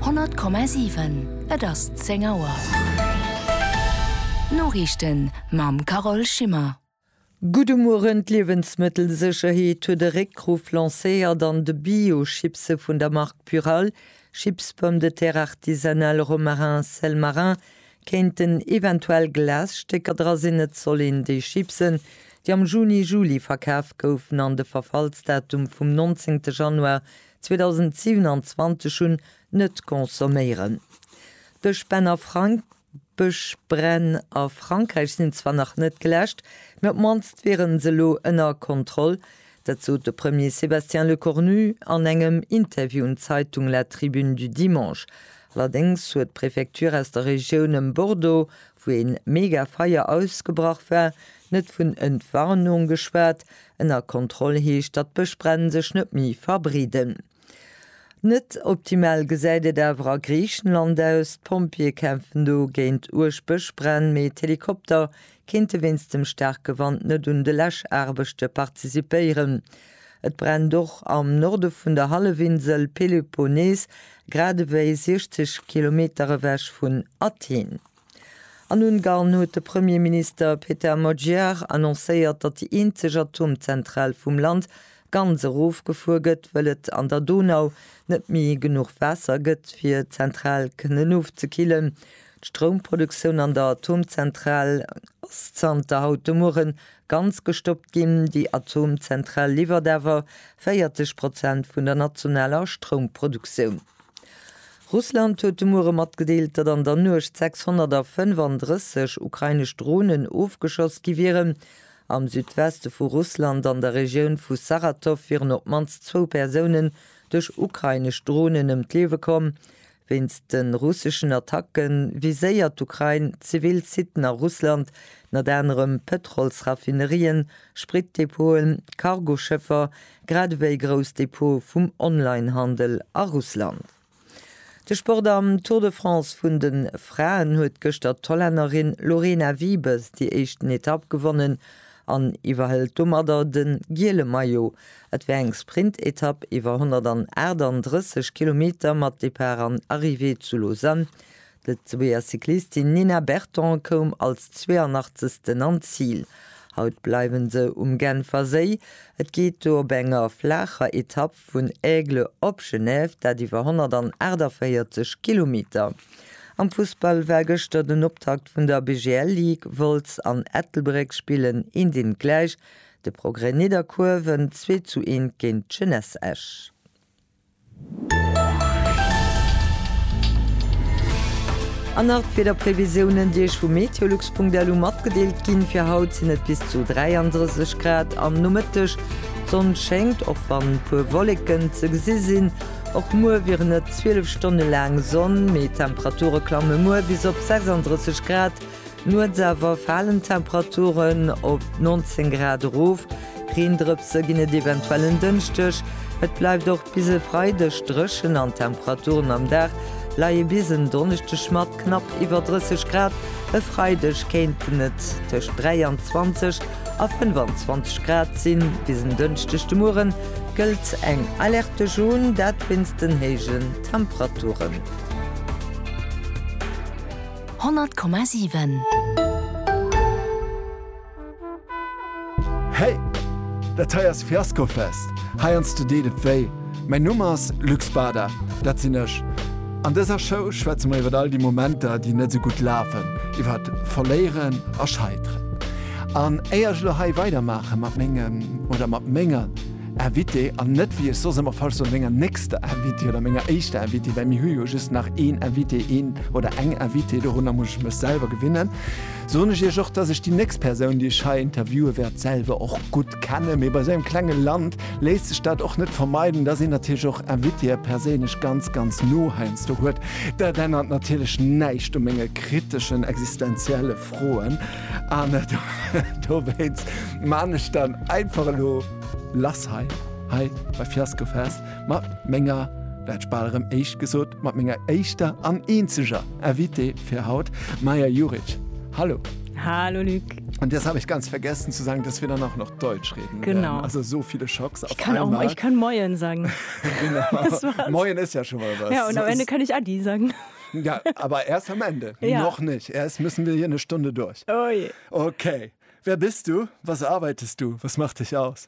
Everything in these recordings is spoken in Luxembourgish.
100,7 Et ass 10 Auer. D'Noriichten mam Carole Schimmer. Gudde Mueren, D'Liewensmëttelsécherheet huet e Réckruff lancéiert an de Bio-Chipse vun der Mark Purall, Chips Pommes de Terre Artisanales Romarin Sel Marin, kéinten eventuell Glasstécker dra sinn. Et soll een déi Chipsen, déi am Juni-Juli verkaf goufen an de Verfallsdatum vum 19 Januar 2027 hunn, net consomméieren. D'Bëschbränn a Frank D'Bëschbränn a Frankräich sinn zwar nach net geläscht, mä op d'mannst wiere se elo ënner Kontroll. Dat sot de Premier Sébastien Lecornu an engem Interview un d'Zeitung La Tribune du Dimanche. Allerdéngs huet d'Prefecture aus der Regioun ëm Bordeaux wou ee mega Feier ausgebrach war, net vun Entwarnung geschwat, ënner Kontroll heescht, datt d'Bëschbränn sech net méi verbreeden. Net optimal gesäit et awer a Griichenland aus, d'Pompjeeë kämpfen do géint uerg Bëschbränn, mee d'Helikopter kéinte wéinst dem staarke Wand net un de Läschaarbechte participéieren, Et brennt och am Norde vun der Hallefinsel Peloponnes, grad ewéi 60 Kilometer ewech vun Athen. An Ungarn huet de Premierminister Peter Magyar annoncéiert, datt déi eenzeg Atomzentral vum Land ganz erofgefuer gëtt, wëll et an der Donau net méi genuch Waasser gëtt, fir d'Zentral kënnen ofzekillen. D'Stroumproduktioun an der Atomzentral ass zanter haut de Mueren ganz gestoppt ginn. Déi Atomzentral liwwert awer 40 Prozent vun der nationaler Stroumproduktioun. Russland huet de Muere matgedeelt, datt an der Nuecht 635 ukrainesch Dronen ofgeschoss gi wieren. Am Südweste vu Russland, an der Regioun vu Saratow, wieren op d'mannst zwou Persounen duerch ukrainesch Dronen ëm d'Liewe komm. Wéinst de russeschen Attacke viséiert d'Ukrain zivil Siten a Russland, ënner anerem Pëtrolsraffinerien, Spritdepoten, Cargoschëffer, grad ewéi grouss Depote vum Onlinehandel a Russland. De Sport Am Tour de France vun de Fraen huet gëschter d'Hollännerin Lorena Wiebes déi éischten Etapp gewonnen. an iwwerhëlt domadder de giele Maillot. Et war eng Sprintetapp iwwer 138 Kilometer mat Depart an Arrivée zu Lausanne. D'Lëtzebuerger Cyclistin Nina Berton koum als 82. an d'Zil. Haut bleiwe se um Genfer Séi. Et geet do op enger flaacher Etapp vun Aigle op Genève, dat iwwer 148 Kilometer. Am Fussball war gëschter den Optakt vun der BGL Ligue, Wolz an Ettelbréck spillen een deen gläich, de Progrès Nidderkuer wënnt 2 zu 1 géint d'Jeunesse Esch. An nach d'Wiederprevisiounen déi Iech vu meteolux.lu matgedeelt ginn, fir haut sinn et bis zu 33 Grad am Nomëtteg, d'Sonn schéngt och wann puer Wolleken ze gesi sinn. Och muer wieren et 12 Stonne laang Sonn, mee d'Temperature klamme muer bis op 36 Grad. Nuets awer falen d'Temperaturen op 19 Grad erof, Reendrëpse ginn et eventuell en Dënschdeg. Et bleift och bis e Freideg dréchen an d'Temperaturen am Dag leie bis en Donneschdeg mat Knapp iwwer 30 Grad, e Freideg kéinten et tëscht 23 a 25 Grad sinn. Bis en Dënschdeg de Muere gëllt eng Alerte jaune, dat wéinst den héijen Temperaturen. 100,7. Hey! Dat hei ass Fiaskofest! Heiansdo deet et wéi. Mäin Numm ass Luc Bader, dat sinn ech. An dëser Show schwätze mer iwwer all déi Momenter, déi net sou gutt lafen, iwwer Verléieren a Scheiteren. An éier ech elo hei weidermaache mat mengem oder mat menger Invitée, an net wéi ech soss ëmmer falsch soen, menger nächster Invitée oder menger éischter Invitée, well mir hu jo just nach een Invité, een oder eng Invitée, dorunner muss ech mech selwer gewinnen, Soen ech Iech och, dass ech déi nächst Persoun, déi ech hei interviewen wäert, selwer och gutt kennen. Mee bei esou engem klengen Land léisst sech dat och net vermeiden, dass een natierlech och Invitéë perséinlech ganz, ganz no heiansdo huet. Dat ännert natierlech näischt u menge kriteschen, existenzielle Froen. An dowéinst maan ech dann einfach elo lass hei, hei bei Fiasco Fest. Mat menger, dat bal erëm éischt gesot, mat menger éischter an eenzeger Invitée fir haut, Maja Juric. Hallo. Hallo Luc. Und jetzt habe ich ganz vergessen zu sagen, dass wir dann auch noch Deutsch reden. Genau. Werden. Also so viele Schocks auf ich kann einmal. Auch, ich kann Moin sagen. genau. Moin ist ja schon mal was. Ja, und am Ende kann ich Adi sagen. ja, aber erst am Ende. Ja. Noch nicht. Erst müssen wir hier eine Stunde durch. Oh je. Okay. Wer bist du? Was arbeitest du? Was macht dich aus?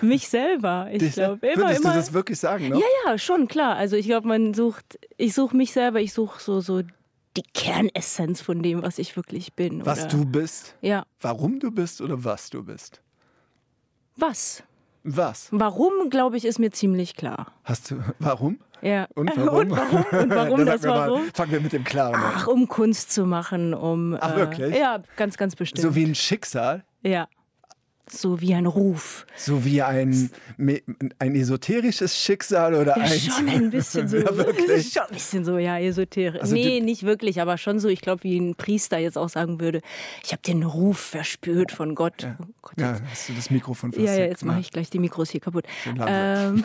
Mich selber, ich Dich glaube. Immer, würdest immer. du das wirklich sagen? Ne? Ja, ja, schon, klar. Also ich glaube, man sucht, ich suche mich selber, ich suche so, so die Kernessenz von dem, was ich wirklich bin. Oder? Was du bist? Ja. Warum du bist oder was du bist? Was? Was? Warum, glaube ich, ist mir ziemlich klar. Hast du, warum? Ja. Und warum? Und warum, und warum das warum? Mal, fangen wir mit dem Klaren an. Ach, um Kunst zu machen, um... Ach, äh, wirklich? Äh, ja, ganz, ganz bestimmt. So wie ein Schicksal? Ja. So wie ein Ruf. So wie ein, mee, ein esoterisches Schicksal oder ja, eins? Schon ein bisschen so. ja, wirklich? Schon ein bisschen so, ja, esoterisch. Also nee, nicht wirklich, aber schon so, ich glaube, wie ein Priester jetzt auch sagen würde, ich habe den Ruf verspürt von Gott. Ja, oh Gott, ja hast du das Mikrofon versetzt. Ja, ja, jetzt mache ich gleich die Mikros hier kaputt. Ähm,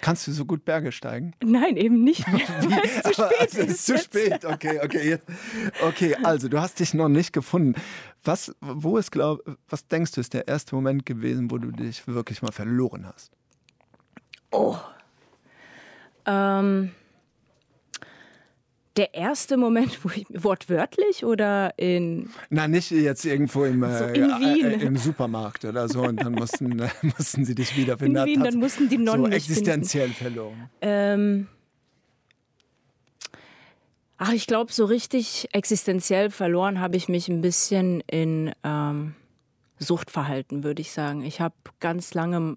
Kannst du so gut Berge steigen? Nein, eben nicht. zu spät ist zu spät. Okay, okay, jetzt. okay. Also du hast dich noch nicht gefunden. Was, wo ist glaub, was denkst du ist der erste Moment gewesen, wo du dich wirklich mal verloren hast? Oh. Ähm. Der erste Moment, wo ich, wortwörtlich oder in? Na, nicht jetzt irgendwo im, so äh, in Wien. Äh, im Supermarkt oder so und dann mussten, äh, mussten sie dich wieder finden. In Wien, dann mussten die Nonnen so existenziell finden. verloren. Ähm, ach, ich glaube, so richtig existenziell verloren habe ich mich ein bisschen in ähm, Suchtverhalten, würde ich sagen. Ich habe ganz lange